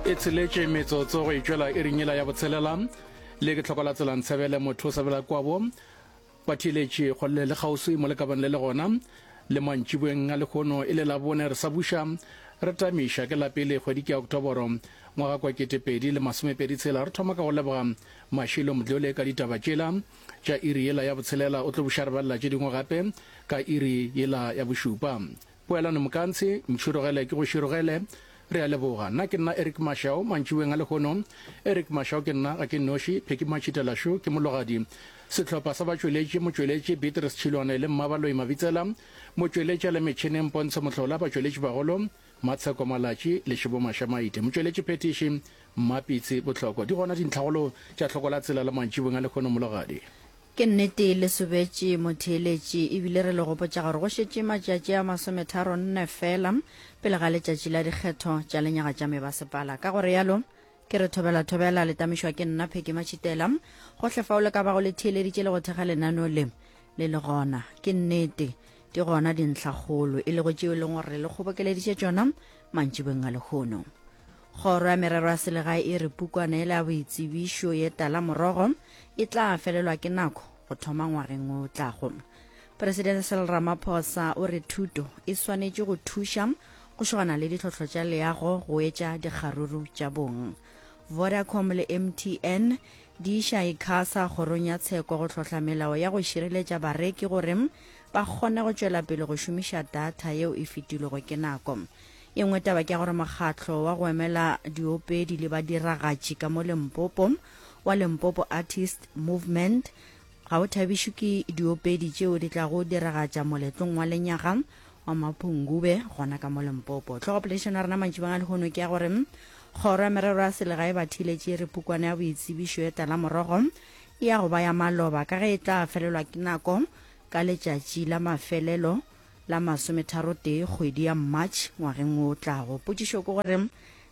e tsheletše metsotso go itšwela e rinyela ya botshelela le ke tlhokola tselang tshebele motho o sabela kwabo batheeletše kgolele le kgauswi mo le kabang le le gona le mantšibweng a lekgono e le labone re sa buša re tamiša ke la pele kgwedi ke ya oktoboro ngwaga kwa ketepedi le masomepedi tshela re thoma ka go leboga mašilo modlole ka ditaba tšela tša iri yela ya botshelela o tlo buša re balela tše dingwe gape ka iri yela ya bošupa Poelano Mokantshe, Ntšhirogele ke go širogele. Re a leboga. Nna ke nna Eric Mashao, mantšiboeng a lehono. Eric Mashao ke nna, ga ke nnoši, Phecky Matšhitela šo ke mologadi. Sehlopha sa batšweletši, motšweletši Beatrice Tšhilwane le Mmabaloi Mabitsela, motšweletši a le metšhineng Pontsho Mohlola, batšweletšibagolo, Matsheko Malatši le Šibo Mašamaite, motšweletši phethiši, Mmapitsi Bohloko. Di gona dintlhagolo tša hloko la tsela la mantšiboeng a lehono, mologadi. Ke nnete le sobetše motheeletši ebile re le gopotša gore go šetše matšatši a masometharonne feela pele ga letšatši la dikgetho tša lenyaga tša mebasepala. Ka go realo, ke re thobela-thobela le tamišwa ke nna Phecky Matšhitela. Gohle fao le ka bago le theeleditše le go thekga lenaneo le, le le gona. Ke nnete, di gona dintlhakgolo e lego tšeo e leng gore re le kgobokeleditše tšona mantšibeng a lehono. Kgoro ya Merero ya Selegae e re pukwana yela ya boitsebišo ye tala morogo e tla felelwa ke nako go thoma ngwageng o tlago. Presidente Cyril Ramaphosa o re thuto e swanetše go thuša go šogana le ditlhohlo tša leago go etša dikgaruru tša bong. Vodacom le MTN di iša Icasa kgorong ya tsheko go hlohla melao ya go šireletša bareki gore ba kgone go tšwela pele go šomiša data yeo e fetilwego ke nako. E nngwe taba ke ya gore mokgatlo wa go emela diopedi le badiragatši ka mo Limpopo wa Limpopo Artist Movement ga o thabišwe ke diopedi tšeo di tlago diragatša moletlong wa lenyaga wa maphungube gona ka mo Limpopo. Tlhogopoledišano ya rena mantši banga lehono ke ya gore kgoro ya merero ya selegae ba thiletše re pukwana ya boitsebišo e tala morogo e ya go ba ya maloba ka ge e tla felelwa ke nako ka letšatši la mafelelo la masometharotee kgwedi ya March ngwageng wo o tlago. Potšišo ke gore,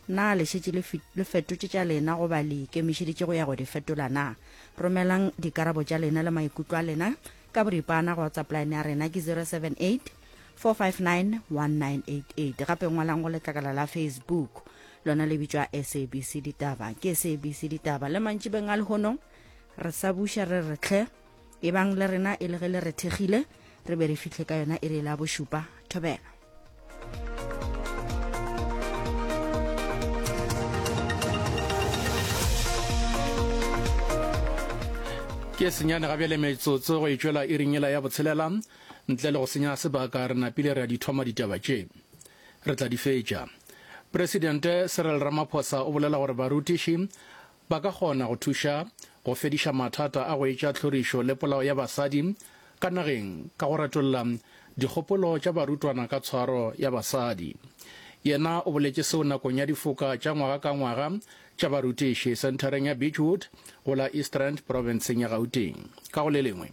Na le šetše le, le fetotše tša lena goba le ikemišeditše go ya go di fetola na? Romelang dikarabo tša lena le maikutlo a lena ka boripana go WhatsApp line ya rena ke 078 4591988 gape ngwalang go letlakala la facebook lona le bitšwa sabc ditaba ke sabc ditaba le mantšibeng a lehono re sa buša re retlhe e bang le rena e le ge le re thekgile re be re fitlhe ka yona e re la bošupa thobela ke senyane ga bjale metsotso go itšwela e ringela ya botshelela ntle le go senya sebaka re napile re a di thoma ditaba tše re tla di fetša presidente cyril ramaphosa o bolela gore barutiši Ba ka kgona go thuša go fediša mathata a go etša tlhorišo le polao ya basadi ka nageng ka go retolla dikgopolo tša barutwana ka tshwaro ya basadi. Yena o boletše seo nakong ya difoka tša ngwaga ka ngwaga tša barutiši senthareng ya Beechwood go la East Rand, profenseng ya Gauteng. Ka go le lengwe,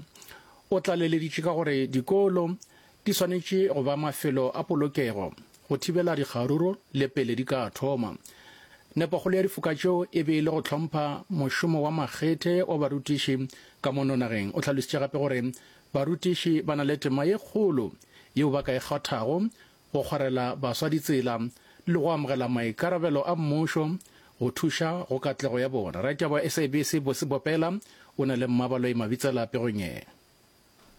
o tlaleleditše ka gore dikolo Di swanetše go ba mafelo a polokego go thibela dikgaruru le pele di ka thoma. Nepokgolo ya difoka tšeo e be e le go hlompha mošomo wa makgethe wa barutiši ka mono nageng. O hlalositše gape gore barutiši ba na le tema ye kgolo yeo ba ka e kgathago go kgwarela baswa ditsela le go amogela maikarabelo a mmušo go thuša go katlego ya bona. Raditaba wa SABC Bosi Bopela o na le mmabaloi Mabitsela pegong ye.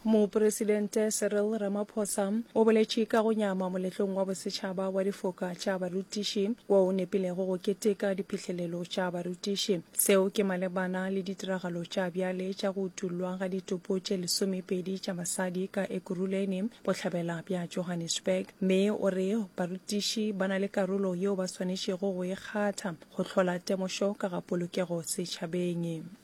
Mopresidente Cyril Ramaphosa o boletše ka go nyama moletlong wa bosetšhaba wa difoka tša barutiši wo o nepilego go keteka diphihlelelo tša barutiši. Seo ke malebana le ditiragalo tša bjale tša go utollwa ga ditopo tše lesomepedi tša basadi ka Ekurhuleni, bohlabela bja Johannesburg, mme o re barutiši ba na le karolo yeo ba swanetšego go e kgatha go hlola temošo ka ga polokego setšhabeng.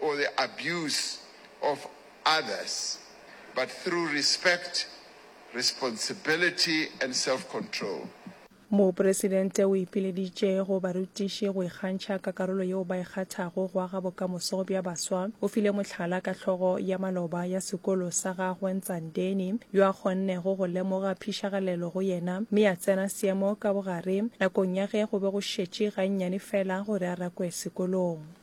or the abuse of others but through respect, responsibility and self-control. Mopresidente o ipileditše go barutiši go ikgantšha ka karolo yeo ba e kgathago go aga bokamoso bja baswa. O file mohlala ka hlogo ya maloba ya sekolo sa gagwe Ntsandeni, yo a kgonnego go lemoga phišagalelo go yena mme a tsena seemo ka bogare nakong ya ge go be go šetše gannyane fela gore a rakwe sekolong.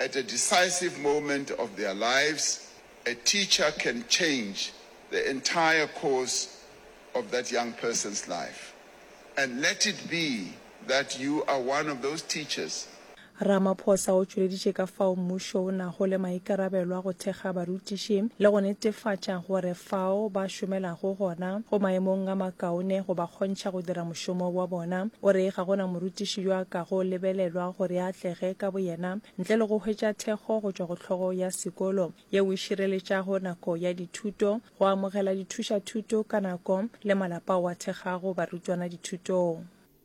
At a decisive moment of their lives, a teacher can change the entire course of that young person's life. And let it be that you are one of those teachers. Ramaphosa o tšweleditše ka fao mmušo o nago le maikarabelo a go thekga barutiši le go netefatša gore fao ba šomelago gona go maemong a makaone go ba kgontšha go dira mošomo wa bona. O re, Ga go na morutiši yo a kago lebelelwa gore a atlege ka boyena ntle le go hwetša thekgo go tšwa go hlogo ya sekolo yeo e šireletšago nako ya dithuto, go amogela dithušathuto ka nako le malapa ao a thegago barutwana dithutong.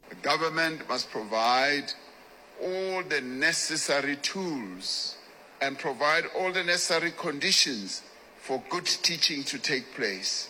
The government must provide all the necessary tools and provide all the necessary conditions for good teaching to take place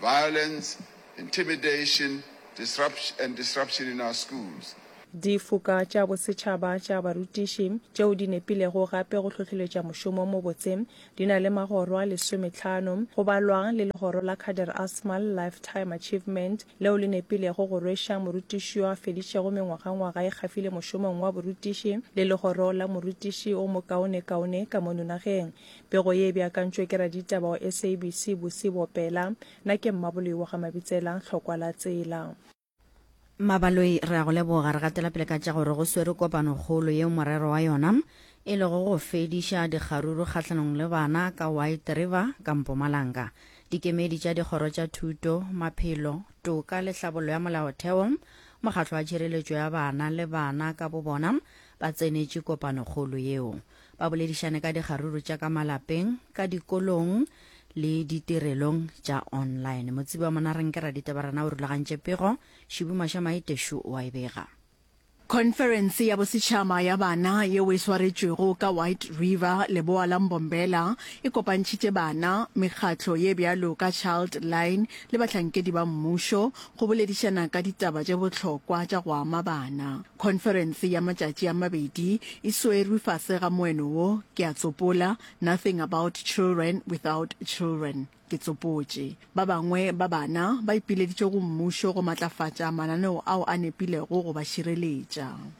violence, intimidation and disruption in our schools. Difoka tša Bosetšhaba tša Barutiši, tšeo di nepilego gape go hlohleletša mošomo o mobotse, di na le magoro a lesometlhano, go balwa le legoro la Kader Asmal Lifetime Achievement, leo le nepilego go rweša morutiši yo a feditšego mengwagangwaga e kgafile mošomong wa borutiši le legoro la morutiši o mokaonekaone ka mono nageng. Pego ye e beakantšwe ke raditaba wa SABC Busi Bopela. Na ke Mmaboloi wa ga Mabitsela, Hlokwa la tsela. Mmabaloi re a go leboga. Re gatela pele ka tša gore go swerwe kopanokgolo yeo morero wa yona e lego go fediša dikgaruru kgahlanong le bana ka White River ka Mpumalanga. Dikemedi tša dikgoro tša thuto, maphelo, toka le hlabollo ya molaotheo, mokgatlo wa tšhireletšo ya bana le bana ka bobona ba tsenetše kopanokgolo yeo. Ba boledišane ka dikgaruru tša ka malapeng, ka dikolong le ditirelong tša online. Motsebi wa Monareng ke Raditabarana o rulagantše pego, Šibu Mašamai Teshu o a e bega. Khonferense ya Bosetšhaba ya Bana yeo e swaretšwego ka White River, leboa la Mbombela, e kopantšhitše bana, mekgatlo ye bjalo ka Child Line le bahlankedi ba mmušo go boledišana ka ditaba tše bohlokwa tša go ama bana. Khonferense ya matšatši a mabedi e swerwe fase ga moeno wo, Ke a tsopola, Nothing About Children Without Children. Ke tsopotše. Ba bangwe ba bana ba ipileditše go mmušo go matlafatša mananeo ao a nepilego go ba šireletša.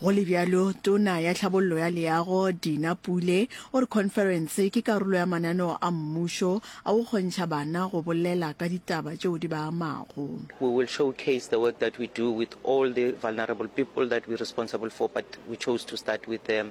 Go le bjalo, Tona ya Tlhabollo ya Leago, Dina Pule, o re khonferense ke karolo ya mananeo a mmušo a go kgontšha bana go bolela ka ditaba tšeo di ba amago. We will showcase the work that we do with all the vulnerable people that we responsible for but we chose to start with the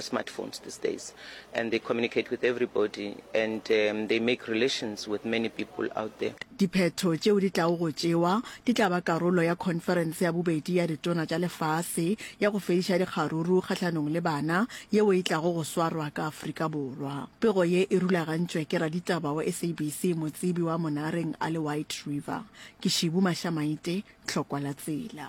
smartphones these days and they communicate with everybody and um, they make relations with many people out there Diphetho tšeo di tlago go tšewa di tla ba karolo ya khonferense ya bobedi ya ditona tša lefase ya go fediša dikgaruru kgahlanong le bana yeo e tlago go swarwa ka Afrika Borwa. Pego ye e rulagantšwe ke raditaba wa SABC motsebi wa Monareng a le White River. Ke Shibu Mashamaite, Tlhokwa la Tsela.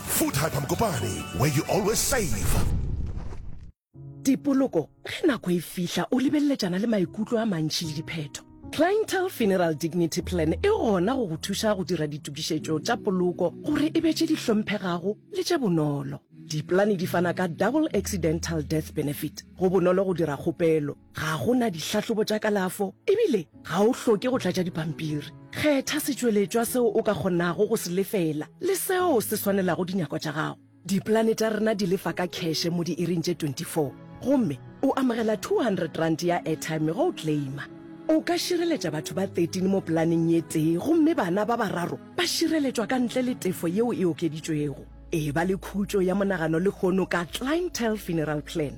Food Hyper Mokopane, where you always save. Dipoloko, ge nako e fihla o lebeleletšana le maikutlo a mantši le diphetho. Clientele Funeral Dignity Plan e gona go go thuša go dira ditokišetšo tša poloko gore e be tše di hlomphegago le tše bonolo. Dipolane di fana ka Double Accidental Death Benefit, go bonolo go dira kgopelo. Ga go na dihlahlobo tša kalafo ebile ga o hloke go tlatša dipampiri. Kgetha setšweletšwa seo o ka kgonago go se lefela le seo se swanelago dinyako tša gago. Dipolane tša rena di lefa ka kheshe mo diiring tše 24 gomme o amogela R200 ya airtime ge o claima. O ka šireletša batho ba 13 mo polaneng ye tee gomme bana ba bararo ba šireletšwa ka ntle le tefo yeo e okeditšwego. Eba le khutšo ya monagano lehono ka Clientele Funeral Plan.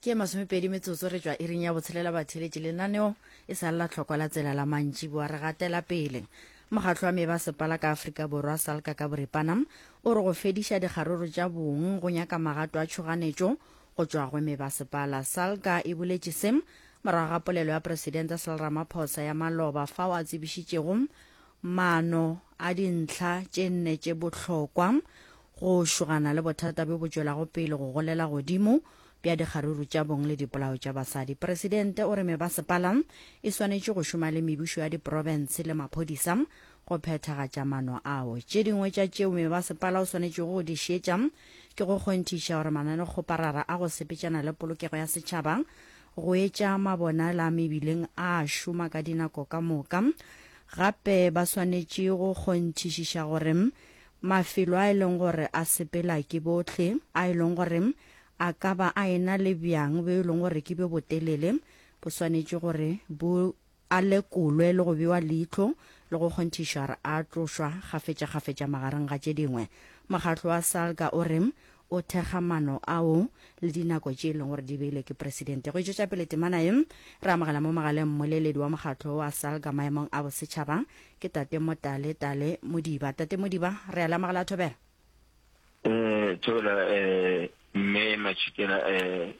ke masomepedi metsotso re tswa iring ya botshelela batheletše lenaneo e sa lela tlhokwa la tsela la mantši boa re gatela pele mokgatlho wa meba sepala ka aforika borwa salka ka boripana o re go fediša dikgaroro tša bong go nyaka magato a tšhoganetšo go tšwa go meba sepala salka e boletše se morago ga polelo ya presidente sel ramaphosa ya maloba fao a tsebišitšego maano a dintlha tše nne tše bohlokwa Go šogana le bothata bjo bo tšwelago pele go golela godimo bja dikgaruru tša bong le dipolao tša basadi, Presidente o re mebasepala e swanetše go šoma le mebušo ya diprobence le maphodisa go phethagatša mano ao. Tše dingwe tša tšeo mebasepala o swanetšego go di šietša ke go kgonthiša gore mananekgoparara a go sepetšana le polokego ya setšhaba, go etša mabonala mebileng a šoma ka dinako ka moka. Gape ba swanetše go kgonthišiša gore mafelo a e leng gore a sepela ke bohle, a e leng gore a ka ba a ena le bjang bjo e leng gore ke bjo botelele, bo swanetše gore bo a lekolwe le go bewa leihlo le go kgonthišwa gore a tlošwa kgafetšakgafetša magareng ga tše dingwe. Mokgatlo wa SALGA o re O thekga maano ao le dinako tše e leng gore di beilwe ke Presidente. Go e tšwetša pele temana ye, re amogela mo mogaleng mmoleledi wa mokgatlo wa SALGA maemong a bosetšhaba, ke Tate Motale Tale Modiba. Tate Modiba, re a le amogela Thobela. Thobela Mme Matšhikela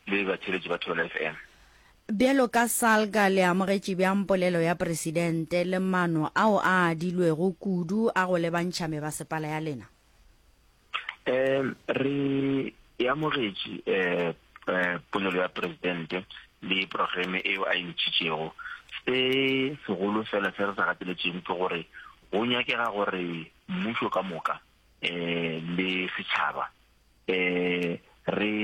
le batheeletši ba Thobela FM. Bjalo ka SALGA le amogetše bjang polelo ya Presidente le maano ao a adilwego kudu a go lebantšha mebasepala ya lena? um re e amogetše um polelo ya presidente le programe eo a e ntšhitšego se segolo fela se re sa gateletšego ke gore go nyakega gore mmušo ka moka um le setšhaba um re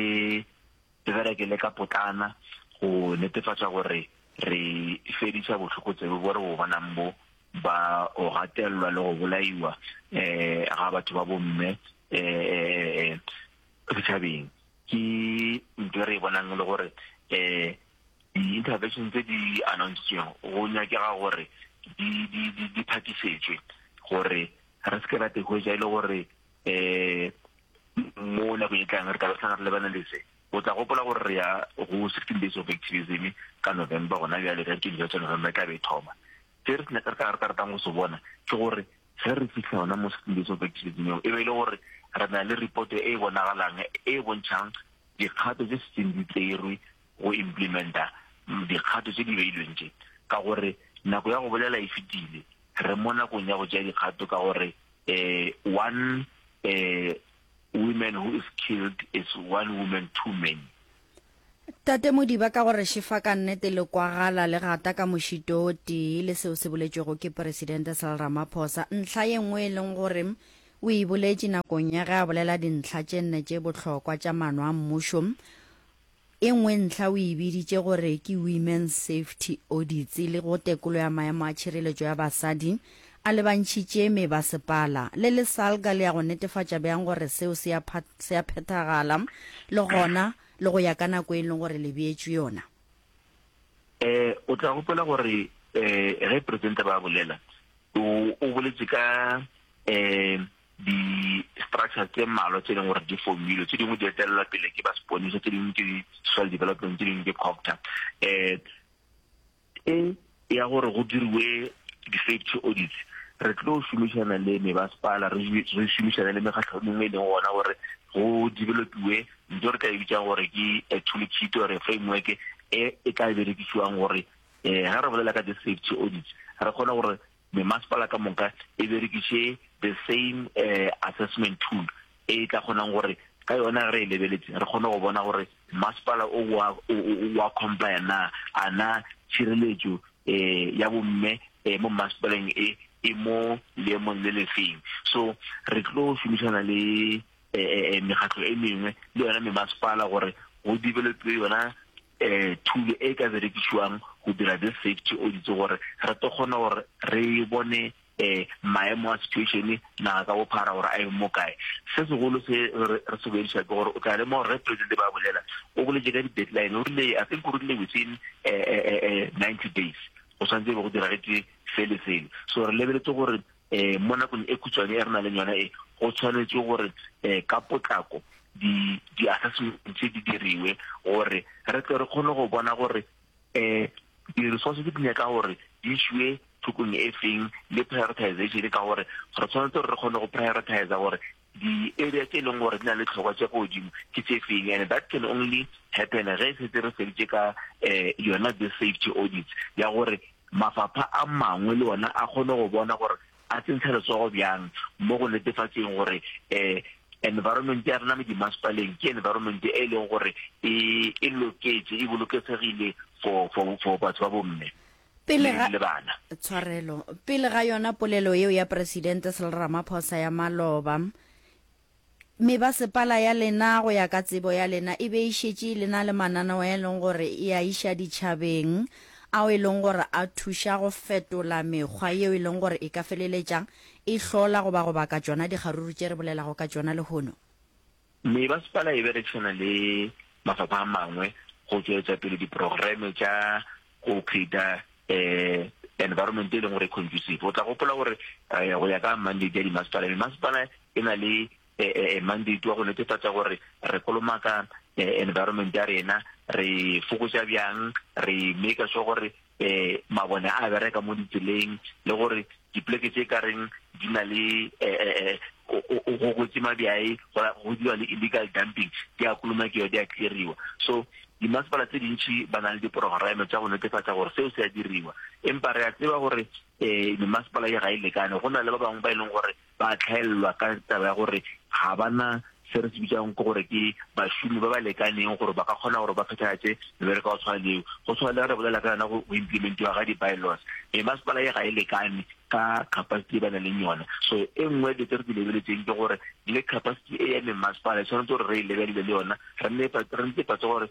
re bereke le ka potlana go netefatša gore re fedisa bohlokotsebe bo re bo bonang bo ba o gatelelwa le go bolaiwa um ga batho ba bomme um setšhabeng ke nto e re e bonang e le gore um di-intervention tse di annountsitsweng go nyakega gore di phatisetšwe gore re se ke ra tegoetša e le gore um mo nako e tlang re tla re re lebana le se o tla gopola gore re ya go sixteen days of activism ka november gona bjale re ke dilo tsa november ka be thoma se re re ka re ka ratang go se bona ke gore ge re fitlha yona mo sixteen days of activism eo e be e le gore re na le report e e bonagalang e e bontšhang dikgato tse setseng di tserwe go implementa dikgato tse di beilweng tse ka gore nako ya go bolela e fetile re mo nakong ya go tšea dikgato ka gore uh, one uh, woman who is killed is one woman too many tate modiba ka gore shefa ka nnete le kwagala le gata ka mošito o tee le seo se boletšwego ke presidente sal ramaphosa ntlha ye nngwe e leng gore o e boletše nakong ya ge a bolela dintlha tše nne tše bohlokwa tša mano a mmušo E nngwe ntlha o e biditše gore ke Women's Safety Audits le go tekolo ya maemo a tšhireletšo ya basadi a lebantšhitše mebasepala le lesalga le ya go netefatša bjang gore seo se a se a phethagala le gona le go ya ka nako e leng gore le beetšwe yona. Eh, o tla gopola gore eh, ge Presidente ba bolela, o, o boletše ka eh, Di-structures tše mmalwa tše e leng gore di formilwe, tše dingwe di etelelwa pele ke ba seponisa, tše dingwe ke di-soil development, tše dingwe ke COGTA. Um e ya gore go diriwe di-safety audits, re tlo šomišana le mebaspala, re re šomišane le mekgatlho e mengwe e leng gona gore go developiwe ntho re tla e bitsang gore ke a toolkit or framework e e tla berekisiwang gore um ha re bolela ka di-safety audits re kgone gore Memasepala ka moka e berekiše the same uh, assessment tool e tla kgonang gore ka yona re e lebeletse re kgone go bona gore masepala o wa comply na a na tshireletso um ya bomme um mo masepaleng e e mo leemong le lefeng so re tlo šomišana le um mekgatlo e mengwe le yone memasepala gore go developwe yona um thulo e ka berekišwang go dira this safety audits gore re to kgona gore re bone um maemo a situation naga ka bophara gore a eng mo kae se segolo se re se boediša ke gore o tla lemo gore re presidente ba bolela o boletse ka di-deadline o rile i think o rile within um ninety days go tshwanetse e be go diragetse se le sele so re lebeletse gore um mo nakong e khutshwane e re na leng yona e go tshwanetse gore um ka potlako di-assessment tse di diriwe gore re tle re kgone go bona gore um di-resources di nyaka gore di šiwe thokong e feng le prioritization ka gore re tshwanetse gore re kgone go prioritize gore di area tše e leng gore di na le tlhokwa tša ko godimo ke tše feng and that can only happen ge e setse re feditše ka um yona the safety audits ya gore mafapha a mangwe le ona a kgone go bona gore a tsentsha letsogo bjang mo go netefatseng gore um environment ya rena mo dimasepaleng ke environment e e leng gore e, e loketse e boloketsegile for for for batho ba bomme Pele ga, le bana. Tshwarelo. Pele ga yona polelo yeo ya Presidente Cyril Ramaphosa ya maloba, mebasepala ya lena go ya ka tsebo ya lena e be e šetše e lena le mananeo a e leng gore e a iša ditšhabeng ao e leng gore a thuša go fetola mekgwa yeo e leng gore e ka feleletša e hlola goba go baka tšona dikgaruru tše re bolelago ka tšona lehono. Mebaspala e berekšana le mafapha a mangwe go tšwetša pele diprogreme tša go creata environment e leng gore e conducive. O tla gopola gore go ya ka mandate ya dimasepala, memasepala e na le mandate wa go netefatša gore re kolomaka environment ya rena, re fokotša bjang, re maker sure gore um mabone a bereka mo ditseleng le gore dipoleke tse ka reng di na le um go kwetse mabjae go dira le illegal dumping di a kolomakiwa di a cleariwa so dimasepala tse dintšhi ba na le diporograme tsa go netefatsa gore seo se a diriwa empa re a tseba gore um memasepala e ga e lekane go na le ba bangwe ba e leng gore ba hlaelelwa ka taba ya gore ga ba na se re se bitsang ke gore ke bašomi ba ba lekaneng gore ba ka kgona gore ba phethagatše mebereko ya go tshwana leo go tshwana le re bolela ka yona go implementiwa ga di-bylaws e masepala e ga e lekane ka capacity e ba nang le yona so e nngwe dilo tse re di lebeletseng ke gore le capacity e ya memasepala e tshwanetse gore re e lebelele le yona re nne patse gore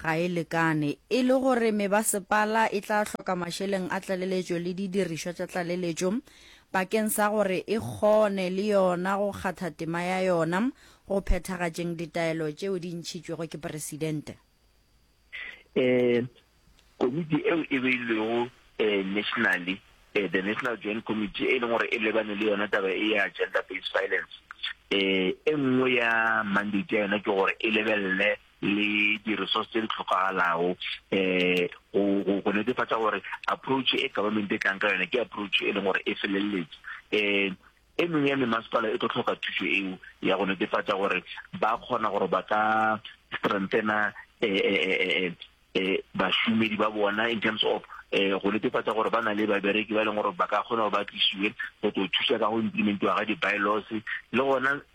Ga e lekane. E le gore mebasepala e tla hloka mašeleng a tlaleletšo le didirišwa tša tlaleletšo bakeng sa gore e kgone le yona go kgatha tema ya yona go phethagatšeng ditaelo tšeo di ntšhitšwego ke Presidente. Ee, komiti eo e beilwego nationally, the National Joint Committee, e leng gore e lebane le yona taba e ya gender-based violence, e nngwe ya mandate ya yona ke gore e lebelele le di-resource tse di tlhokagalago um go netefatsa gore approach e government e tlang ka yone ke approach e leng gore e feleletse um e mengwe ya memasepala e tlo tlhoka thuso eo ya go netefatsa gore ba kgona gore ba ka strengthena um bašomedi ba bona in terms of um go netefatsa gore ba na le babereki ba e leng gore ba ka kgona gore ba tlisiwe go tlo thusa ka go implementiwa ga di-bylaws le gona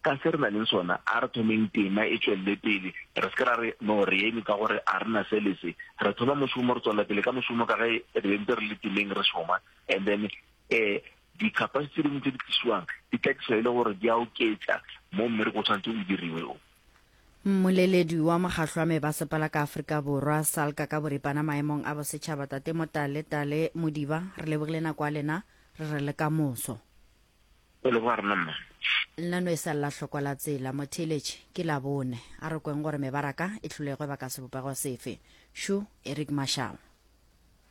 Ka se re na leng sona, a re thomeng tema e tšwelele pele. Re se ke ra re, No, re eme ka gore a re na se le se. Re thoma mošomo, re tšwelela pele ka mošomo ka ge re be ntse re le temeng re šoma. And then e, dikapase tše dingwe tše di tlišiwang di tlatišwa e le gore di a oketša mo mmereko o tshwanetse o diriwe o. Mmoleledi wa mokgatlo wa mebasepala ka Afrika Borwa, SALCA, ka boripana maemong a bosetšhaba, Tate Motale Tale Modiba, re lebogile nako ya lena, re re le kamoso. O leboga rena mma. Nna no e sa lla hlokwa la tsela, motheeletši, ke Labone. A re kweng gore mebaraka e hlolegwe ba ka sebopego sefe. Shu, Eric Marshall.